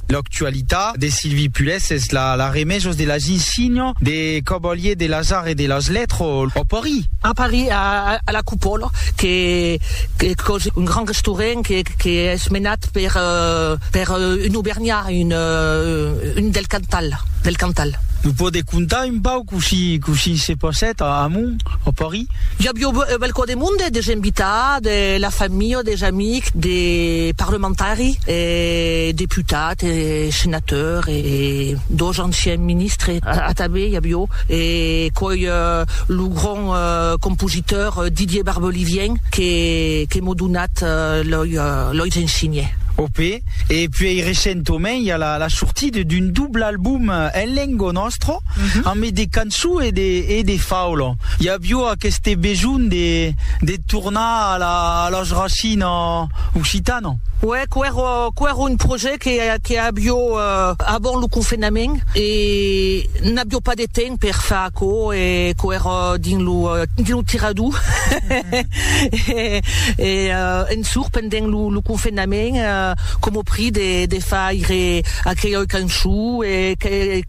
L'actualitat de Silvie Pulès es la la remejos de la gin signo de Cavalier de las Arts et de las Lettres a Paris. A Paris, a a la Coupola, que que qu'es un grand restaurant que que es menat per per un aubergnat, un un del Cantal, del Cantal. Nos pòde contar un pauc cossí cossí se passèt amont a Paris? I avió balcó de monde, des invitats, de la familha, des amics, de parlamentari, e deputat, e senateur, e dos anciens ministres. Atabé i avió e coi lo grand compositeur Didier Barbelivien que m'o donat loi ensinhè. Ok. E puèi recentament i a la sortida d'un doble album en lengo nostro, ambe de cançon e de faula. I avió aqueste besonh de de tornar a la a las rachina occitana. Uè, quèrò quèrò un projèct que que avió avant lo confenament e n'avió pas de temps per far aquò e quèrò dins lo dins lo tirador e en surt pendent lo lo confenament coma prix de de faire aquela cançon e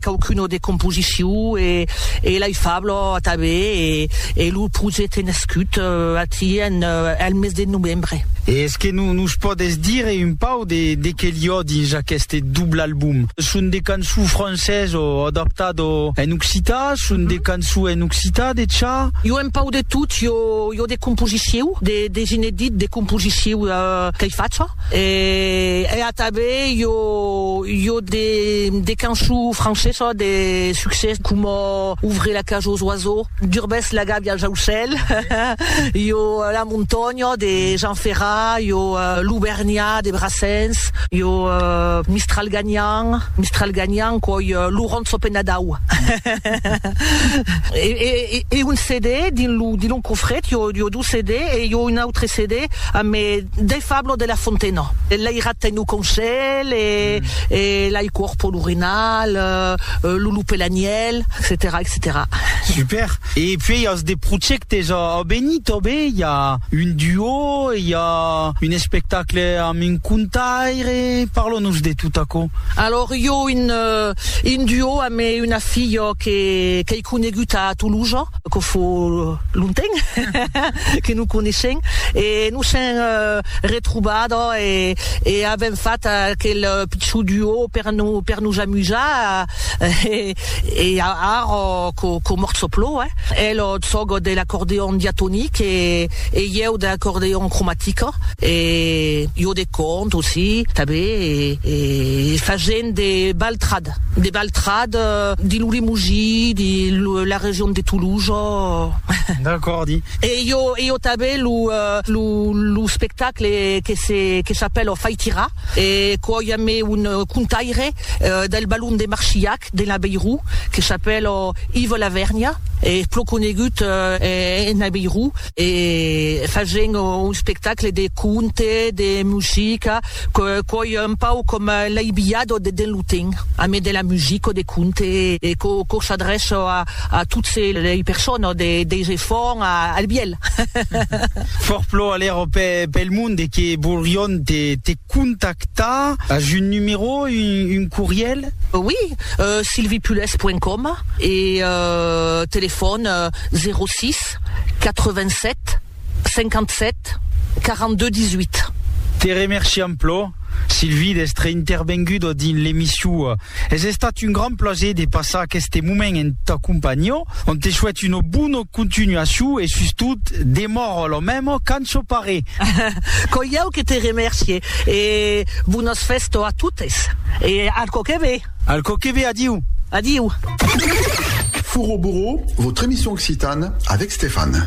qualcuna de composition e E l'ai fablo atabè e lo projècte nascut ací al mes de novembre. E es que nos pòdes dire un pauc de qué li ò dins aqueste doble album? Son de cançons francés ò adaptado en occità? Son de cançons en occità de cha? I ò un pauc de tot, i ò de composiciu, des inedits de composiciu qu'ai facha e atabè i ò Io de canço francesa de succès coma Ouvrez la cage aux oiseaux, Durbèsses la gàbia als aucèls, io La montanha de Jean Ferrat, io L'Aubernha de Brassens, io Mistral ganhant, Mistral ganhant coi Laurent Sopenadau. E un CD dins lo cofret io CD e jo un autre CD amb Dei Fablo de la Fontena. Lei Ratten lo Conselh e Lei Cuorpo l'Urinal, Lo Lup e l'Anièlh, etcetèra etcetèra. Super! E puèi as de projèctes a venir tanben? I a un duo, i a un espectacle amb un contaire, parla-nos de tot aquò. Alòrs jo un duo amb una filha qu'ei conegut a Tolosa, que fo. lonten que non coneishen e nos sèm retrobada e avèm fat aquel pichon duo per nos amusar e ara qu'ò mòrt çò plò el sòc de l'acordeon diatonic e ieu de l'acordeon cromatic e jo de cònt aussi tanben e fagent de baltrad. Mat. De Baltrad, de lo Limouji, de la region de Toulouse. D'acòrdi. E jo e jo tanben lo lo lo spectacle que se que s'apèla Fai tirar e quò i a me un contaire del balon de Marchiac de l'Abeirou que s'apèla Ive Lavernia e plo conegut en Abeirou. e fagent un espectacle de conte, de musica, quòi un pauc com l'aibillat o de dens lo temps, amé de la musica o de conte e quò s'adrèça a totes lei personas, deis efants al bielh. Fòrplò alèra pel monde que volrion te Contactar as un numero, un corrièl? Oui, sylviepules point com e telefòn 06 87 57 42 18. Te remerciam plò, Sylvie, d'èstre intervenguda dins l'emission. Es estat un grand plaser de passar aqueste moment en ta companhiá. On te souhaite una bona continuacion e sustot demòra la mèma qu'ançò pare. Qu'oi iau que te remercie e bonas festo a totes e al cò que ve. Al cò que ve, adiu. Adiu. Furo Bouro, votre émission occitane avec Stéphane.